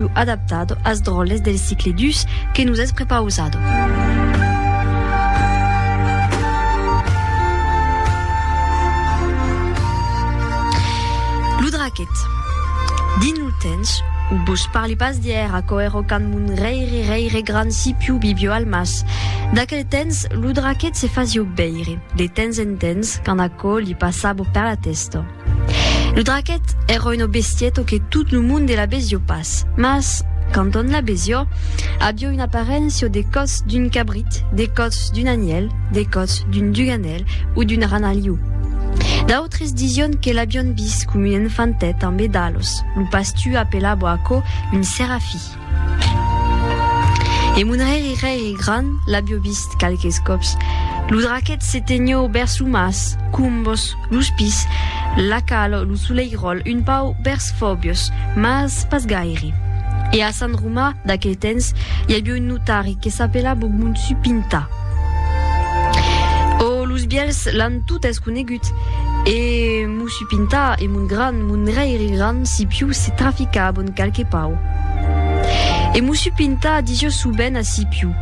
Lo adaptado as dròlles del cicle dus que nos es prepausado. Dins lo temps o vos parli pas d'hièr aquò èra quand mon reire reire grand sipiu vivió al mas d'aquel temps lo draquet se fasió veire de temps en temps quand aquò li passava per la testa Lo draquet èra una bestieta que tot lo monde la besió pas, mas, quand on la besió, avió una aparéncia de còth d'un cabrit, de còth d'un anièl, de còth d'un duganèl o d'un ranaliu. D'autres disión que l'avión vist com un enfantet ambe dalos, lo pastu apelabò aquò un serafi. E mon hèri rei e gran l'abio vist qualques còps. Lo draquet se tenho bèrs lo mas, combos, los pis, la calo, lo soleiròl, un pau bèrs fòbios, mas pas gaire. E a Sant Romà, d'aquel tens, i abio un notari que s'apelabo Monsu Pinta. O los bièlhs l'an totes conegut e Monsu. Pinta e mon gran, mon reire gran, si piu se trafica a bon calque pau. E Mussu Pinta disio su ben a si piu.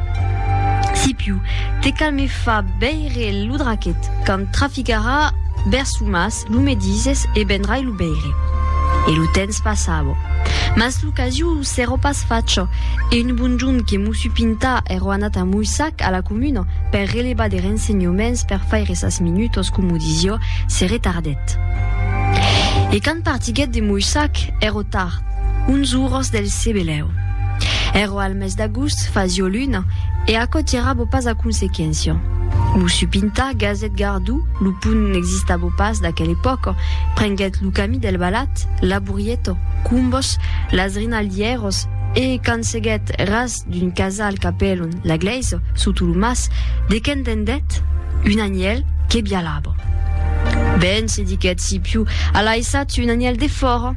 Si piu, te cal me fa beire lo draquet, quand traficarà bèrs su mas, lo me dises e benrai lo beire. E lo tens pas abo. Mas lo casiu Sero pas facho. E un bonjon que Mussu Pinta ero anat a Moissac, a la comuna, per relevar de rensenhoments per faire sas minutos, comu disio, se retardèt. E quand partiguèt de Moissac, ero tard, uns uros del Cebelèu. Ero al mes d'agust, fasio luna, e aquò tirabo pas a consequéncia. Mussu Pinta, gasèt gardou, lo pont n'existabo pas d'aquel epòca, prenguèt lo camí del Balat, la. Burrietto, Cumbos, las Rinaldièros, e quand seguèt ras d'un casal qu'apelon la Glèisa sota lo mas, de qué entendèt? Un anièl que bialava. Ben, se diguèt Scipiu, a laissat un anièl defòra.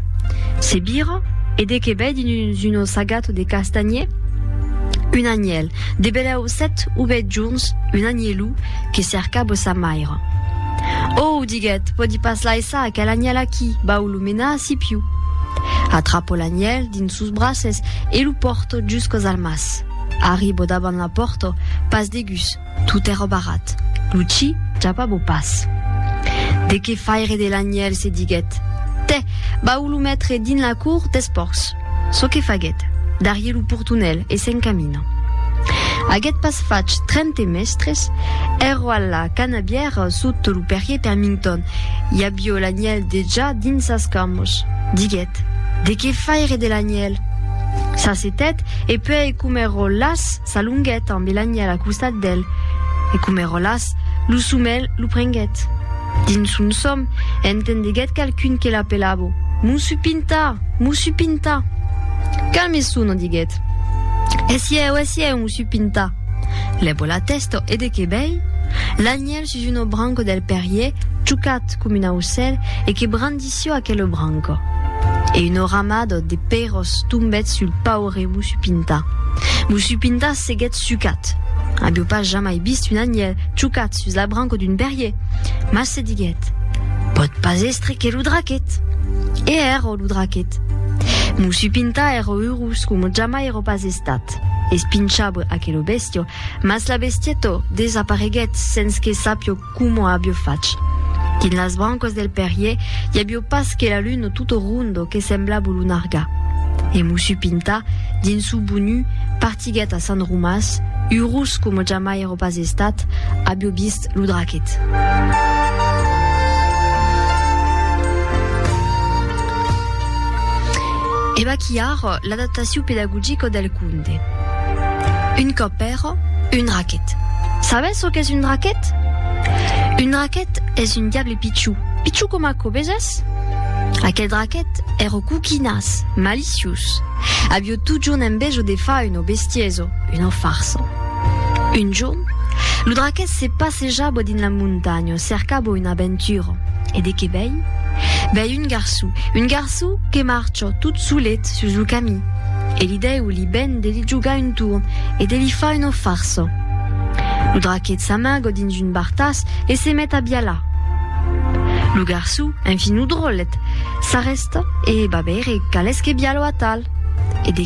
Se vira, e de qué vei dins un ossagato de castanhier? Un anièl, de belèu sèt o uèit jorns, un anièlu que cercava sa maira. Ò, diguèt, pòdi pas laissar aquel anièl aquí, bauló! Lo mena a Sipiu. Atrapo l'anièl dins sos braces e lo pòrto juscos al mas. Arribo davant la pòrto, pas de gust, tot èra barrat. Lo chi japabo pas. De qué faire de l'anièl, se diguèt. Tè, vau lo metre dins la cour des pòrcs. Çò que faguèt, darrier lo portonèl e se'n camina. Aguèt pas fach trente mèstres, èro a la canabièra sot lo perrier Permington, I avió l'anièl dejà dins sas camas. Diguèt, De qué faire de l'anièl? S'assetèt e puèi Comeròlas s'alonguèt ambe l'anièl a costat d'el. E Comeròlas, lo somèl lo prenguèt. Dins son sòm, entendeguèt qualqu'un que l'apelava, Mossú Pintà! Mossú Pintà! Calme sona, diguèt. Esièu, esièu, Mossú Pintà! Lèva la tèsta e de qué vei? L'anièl sus un obranco del perrier, chucat com un aucèl, e que brandissió aquel obranco. E un oramado de pèiros tombèt sul paure Mussupinta. Mussupinta seguèt sucat. Avió pas jamai vist un anhèl chucat sus l'abranco d'un perrier, mas se diguèt, Pòt pas èstre que lo draquet! E èra lo draquet. Mussupinta èra urós coma jamai èra pas estat. Espinchabre aquelo bèstió. Mas la bestietto desapareguèt sens que sapio coma abio fach. Dins las brancas del perrier i abio pas que la luna tutto rondo que semblabo lo nargar. E Mussu Pinta, dins su bonu, partiguèt a Sant Romàs, urós coma jamai èro pas estat, abio vist lo draquet. E vaquí ara. L'adaptaciu pedagogico del conte. Un còp pèro, un raquet. Sabètz çò qu'es un raquet? Un raquet es un diable pichou, pichou coma aquò, vesètz? Aqueth raquet è ro coquinàs, maliciós. Avió totjorn envejo de far un obestieso, una farsa. Un jorn, lo raquet se passejava dins la montanha, cercava una aventura. E de qué vei? Vei un garçou, un garçou que marcha. jo tot solet sus lo camin, e li dèu li ben de li jogar un torn e de li far una farsa. Lo draquet s'amaga dins un bartàs e se met a bialar. Lo garçon, enfin lo dròllet, s'arrèsta e va veire qual es que bialo atal e de